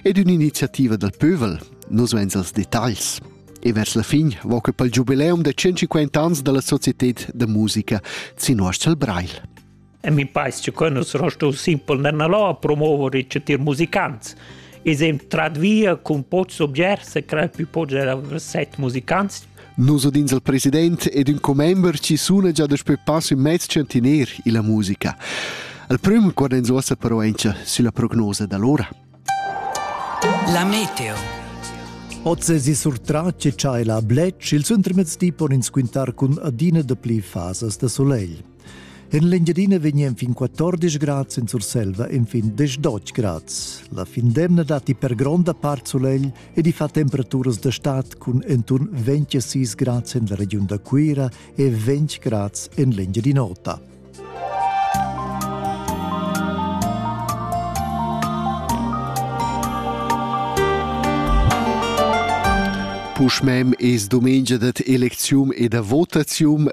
ed ün'iniziativa dal pövel, nus vains els detagls. E vers la fin va que pel giubileum da 150 ans dalla Societät da Musica Zinoschel Breil. E mi paesce che nus rostul simpel nella lò a promuovere i citir musicants. E sem trad via cun pots objers e crei più pots era set musicants Nus udins il president ed ün commember chi suna già daspö pass ün mez tschantiner illa musica. Il prüm quad ens uossa però auncha sülla prognosa da l'ora. La meteo. Oz esi surtratg e tschai la bletsch il suntermezdi pon ins quintar cun adina dapli fasas da solegl. En l'Engiadina vegnan fin 14 grads en Surselva e fin 18 grads. La fin d'emna datti per gronda part sulegl ed i fa temperaturas da stad cun enturn 26 grads en la regiun da Cuira e 20 grads en l'Engiadin'Ota. Puschmem es domengia dat eleczium e da votazium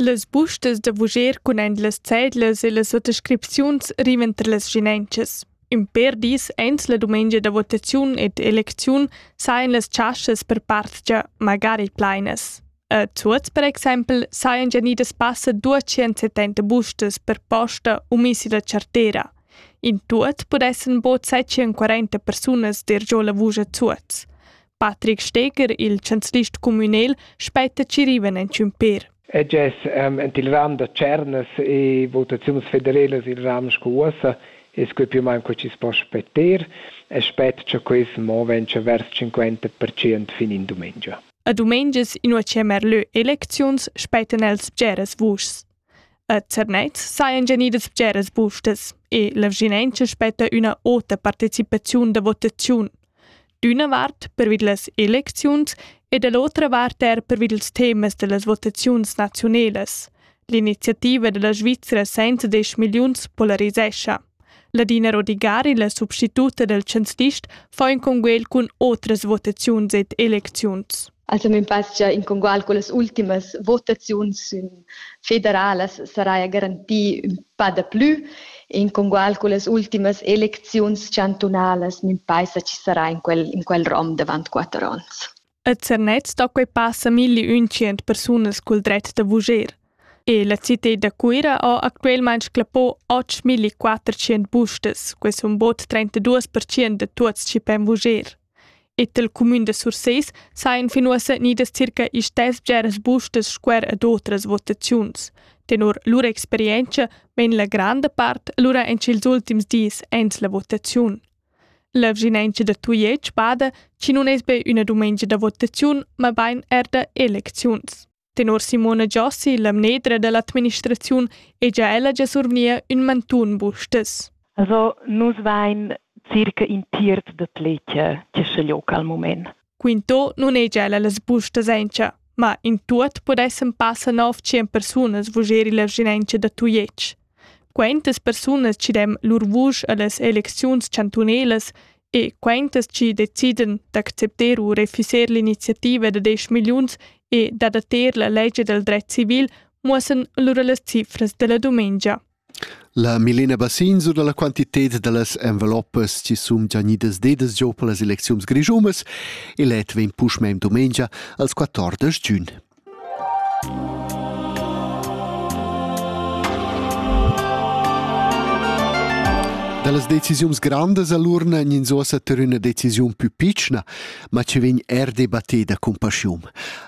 Las bustas da vuger cun ein las cedlas e las attescripziuns rivan tra las schinentschas. In per dis ens la dumengia da votaziun ed elecziun sajan las chaschas per partgia magari plainas. A Zuoz, per exempel, sajan già nidas passa 270 bustas per posta u misi da chartera. In tuot pudessan bod 740 persunas dir giò la vusch a Zuoz. Patrick Steger, il chanzlist communal, spetta Ciriven en Ciumpir. E gess um, en il ram da Cernas e votaziuns federelas il ram sco uossa e sco più main co ci spo spetter e spet cha quis mo ventscha vers 50% fin in dumengia. A dumengias, inua che merlö elecziuns, spettan els bgeras vuschs. A Zernez sajan gnidas bgeras bustas e la vschinanca spetta üna ota partecipaziun da votaziun. D'üna vart pervi da las elecziuns e da l'otra vart er pervi dals temas da las votaziuns naziunelas. L'iniziativa da la Svizra senza 10 milliuns polarisescha. Ladina Rodigari, la substituta dal chanzlist, fa in conguel cun otras votaziuns ed elecziuns. Also mein pass gia in congual con las ultimas votaziuns federalas sarai garanti un pa da plü. In congual con las ultimas elecziuns chantunalas mein paisa ci sarà in quel, in quel rom davant quatter ons. A Zernez sto quei passa milli untschient persunas cul dret da vuger. E la citad da Cuira ha actualmein sclappò 8.400 bustas, quei sun bod 32% da tuots chi pen vuger. E tel cumün da Surseis sajan fin uossa nidas circa istess bgeras bustas squer ad otras votaziuns. Tenor lur experienza vegn la granda part lura en ils ultims dis ens la votaziun. La vschinauncha da Tujetsch bada chi nun es be üna dumengia da votaziun, mabain eir da elecziuns. Tenor Simona Giossi, la mnedra da l'administraziun, è già ella già survgnia ün mantun bustas. Also, nus vain circa in tiert da tletje che schaglioca al mument. Quinto nun ei gia las bustas encha, ma in tuot pudessan passar nov tschien persunas vugeri la vschinentscha da Tujetsch. Quentas persunas ci dem lur vusch allas elecziuns chantunelas e quentas ci decidan d'accepter u refuser l'iniziativa da 10 milliuns e d'adatter la legge del dret civil muossan lura las cifras della dumengia. La Milena Bassin sur dalla quantited dallas enveloppas chi sun già gnidas dedas giò per las elecziuns grischunas e let vegn puschmain dumengia als 14 giun. Dallas decisiuns grandas all'urna gnins uossa ter üna decisiun pü pitschna, ma chi vegn er debatteda cun paschium.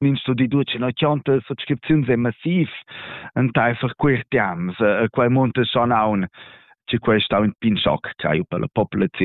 in studi ducin a chanta subscripziuns e massiv enteifer quei temps e quei monte son aun che quei stau in pin schoc cai per la populaziun